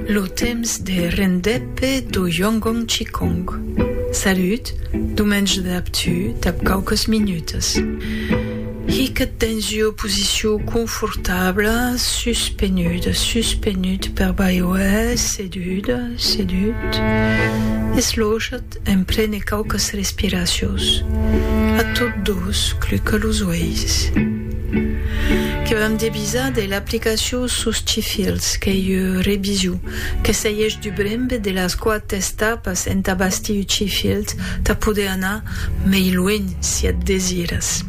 Lo temps de rendèpe do Yongong Qigong. Salut, domenge dab tu dab quauques minutes. Hiquet dens ua posicion confortabla, suspenut, suspenut per baiuèr, sedut, sedut, eslochat, En prene quauques respiracions, a tot dos cluca los uèis. Que vam debisar de l'aplicacion sus Chifils, qu'ei ua revision que seièsh du brembe de las quate estapas entà bastir Chifils tà poder anar mei luenh si at desiras.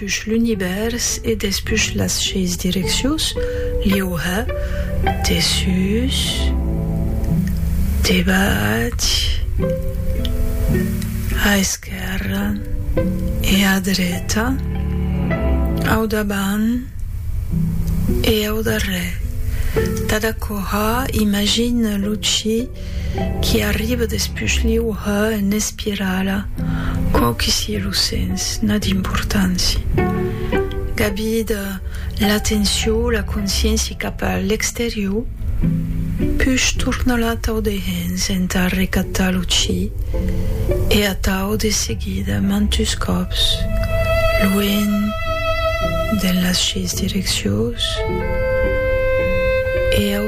Despús l'univèrs e despús las seis direccions, liuha, dessús, debach, a esquèrra e a dreta, au davant e au darrèr. Cada corrà imagina lo chi. Qui arriba despush liu ha en espirala, quau qui sié lo sens, n'a d'importància. Gabida l'atenciò, la consciéncia cap a l'exterior, push tornal atau de hens entà recatar lo chi e atau de seguida mantus còps luènh de las sheis direccions e au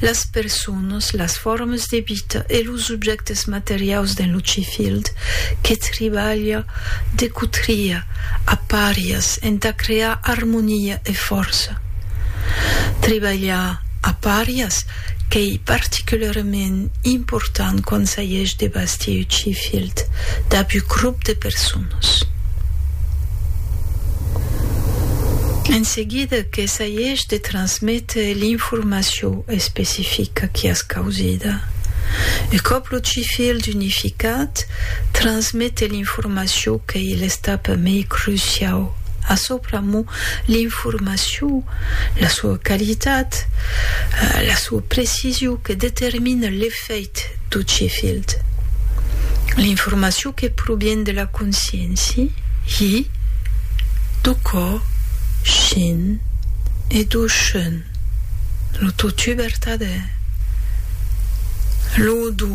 Las personas, las formas de vita e los objèctes materiaus dens lo Cfield que tribalha de cotria a parias entà crear armonia e fòrça. Tribalhar a parias qu'ei particularament important quand s'ageish de bastir un Cfield dab un grop de personas. En seguida que s'ageish de transmetre Te l'informaciò especifica qui as causida. Un còp lo CIFIL d'unificat, transmete l'informaciò qu'ei l'estapa mei cruciau. A çò pr'amor, l'informaciò, la soa qualitat, la soa precision que determina l'efecte. Fèit tot ce filhd. L'informacion que provien de la conscienci, hi, do cò, shin, e do shun, lo totu vertadè. Lo do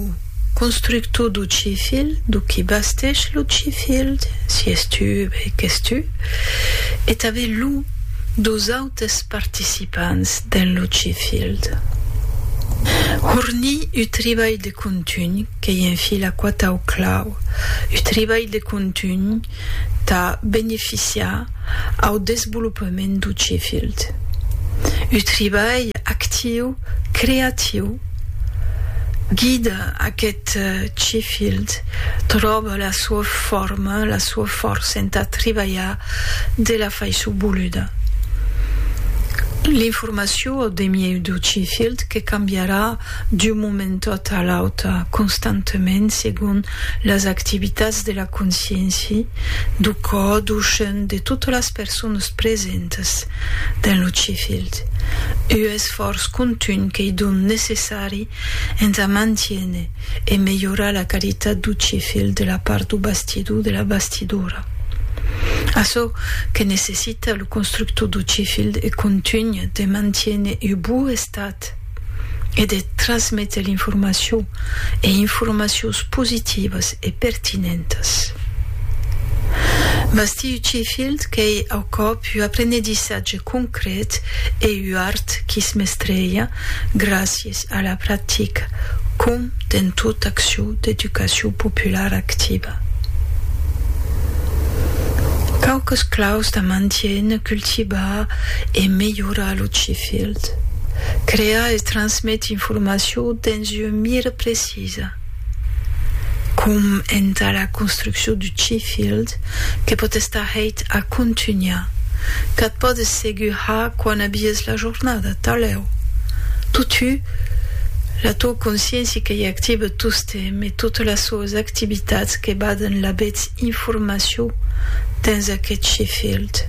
constructor do ce filhd, do qui basteish lo ce filhd, si es tu, be qu'es tu, e tanben lo dos autres. Totes participants dens lo Chifield. Hornir ua tribalh de contunh qu'ei en fi la quatau clau, ua tribalh de contunh tà beneficiar au desvolopament dau Chifield, ua tribalh actiu, creatiu, guida aquest Chifield, tròba la sua forma, la sua fòrça entà tribalhar de la faiçon voluda. L'informacion au demiei dau cifilh que cambiarà d'un moment tot a l'auta constantament segon las activitats de la consciéncia, dau cò, dau chèn de totas las personas presentas dens lo cifilh. Uu esfòrç contunh qu'ei donc necessari entà mantiéner e melhorar la qualitat dau cifilh de la part dau bastidor, de la bastidora. Açò que necessita lo constructor do Chefield e contunh de mantiene u bou estat e de trasmete l'informacion e informacions positivas e pertinentas. Bastir u Chefield qu'ei au còp u aprenedissatge concret e u art qui's mestreja gràcia Es a la practica, com dens tota accion d'educacion populara activa, quauques claus da mantiener, cultivar e melhorar lo CIFILT, crear e transmetre informacion dens un mire precis, Lisa. Com entà la construccion du Chefield, que pòt estar hèit a contunhar, qu'ath pòdes segur har quan abies la jornada, talèu. Totú, la tò consciéncia que i active tostemp e totes las soas activitats que baden la betz informacion dens aqueth Chefield.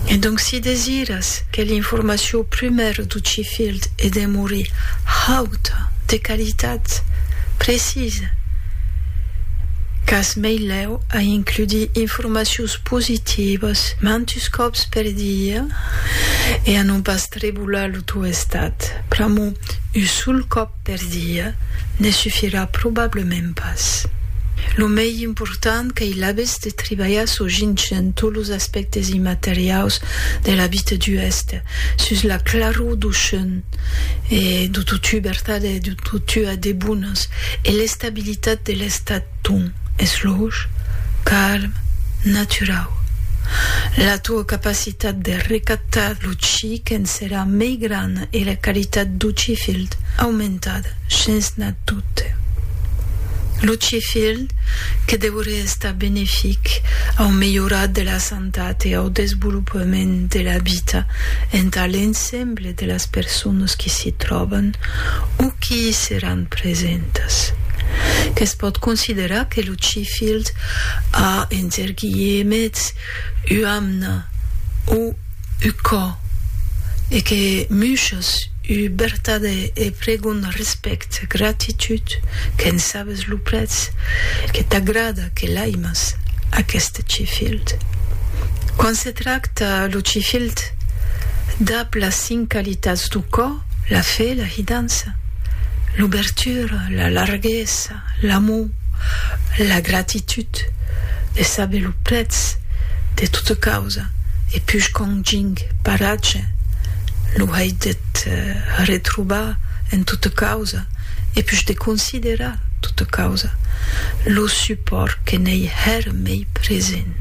E donc si desiras que l'informacion prumèra du Field e demori haut de qualitat precisa qu'as meilèu a includi informacions positivas mantus còps per dia e a non pas trebolar lo tò estat pr'amor un sol còp. Per dia, ne sufirà probablement pas. Lo mei important qu'ei l'aves de tribalhar çò gintgen tot los aspèctes immateriaus de la vita du èster, sus la claror du chun e du totu vertat e du totu a debonas e l'estabilitat de l'estat ton es loge, calm, naturau. La toa capacitat de recaptar lo chi qu'en Era mei gran e la qualitat do Chifild aumentat shens nat dubte. Lo Chifild que deuriá estar benefic au melhorat de la santat e au desvolopament de la vita entà l'ensemble de las personas qui s'i tròban o qui i seràn presentas. Que's pòt considerar que lo Chifild a, enter guilhemets, uamna o. U cò e que muchas u bertade e pregon respect gratitud qu'en sabes lo prètz que t'agrada que l'aimas aqueste chifild quan se tracta lo chifild dab las cinc qualitats du cò la fe la hidança l'ubertura la larguesa l'amor, la gratitud, de saber lo prètz de tota causa, e puish qu'ont ging paratge, lo hèit deth retrobar en tota causa, e puish de considerar tota causa, lo supòrt que n'ei hèr mei present.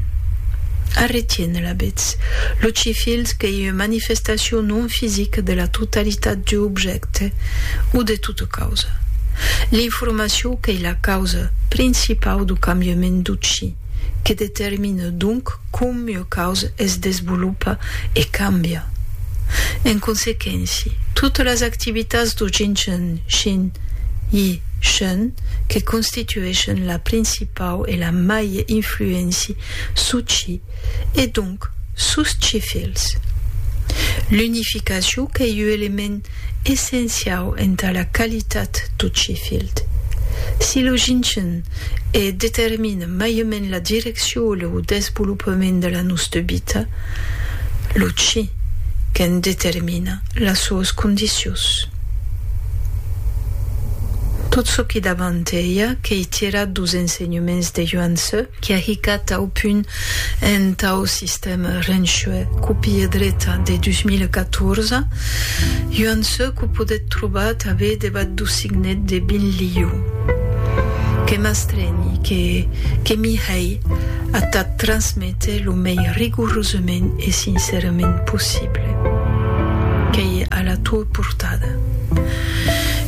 Arretién la betz, lo chifilh qu'ei ua manifestacion non fisica de la totalitat d'ua objècte o de de causa. L'informacion qu'ei la causa principau du cambiament d'utshi, que determina donc com ua causa es desvolopa e cambia. En consequenci, totas las activitats du Jinchen Shin Yi Shen que constitueschen la principau e la maie influenci s'utshi e donc sus tshi fils. L'unificacion qu'ei ua element essenciau entà la qualitat tot Sheffield. Si lo ginchen e determina maiament la direccion e lo desvolopament de la noste vita, lo chi qu'en determina las soas condicios. Tot çò qui davant ei a quei tirat dos ensenhements de Yuan Tze, qui a hicat tau punt en tau sistèma renshue copia dreta de 2014, Yuan Tze quo podèt trobar tabé debat do signet de Bin Liu, que m'astrenhi, que que m'i hèi a t'ac transméter lo mei rigorosament e sincerament possible. Qu'ei a la tua portada.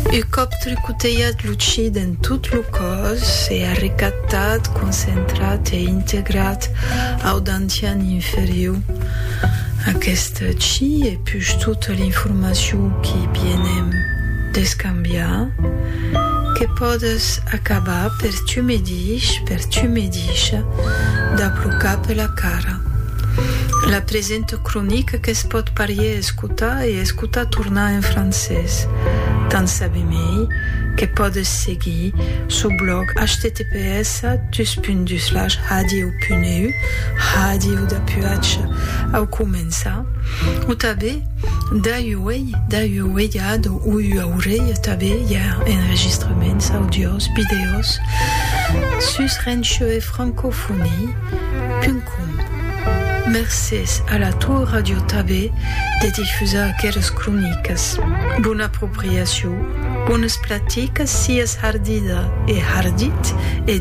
U còp tricotejat lo chi d'en tot lo còr, Sos se a recaptat, concentrat e integrat au dantian inferiu. Aqueste chi e push tota l'informacion qui bienem d'escambiar, que pòdes acabar per tu medish, per tu medisha, d'aplocar pela cara. La presenta cronica que's pòt parier es. Escutar e escutar tornar en francés. Tant sabi mei que pòdes seguir sou blòg https dus punt dus slash hadieu punt eu hadieu d'apuatge au començar o tabé dai uei dai ueiat o ui aurei tabé i a enregistraments audios videos sus rencheu e francofonie. www.radiotabe.com Mercés a la Tor Radio Tabe de difusar aquelas cronicas. Bona apropriacion, bonas platicas sias hardida e hardit e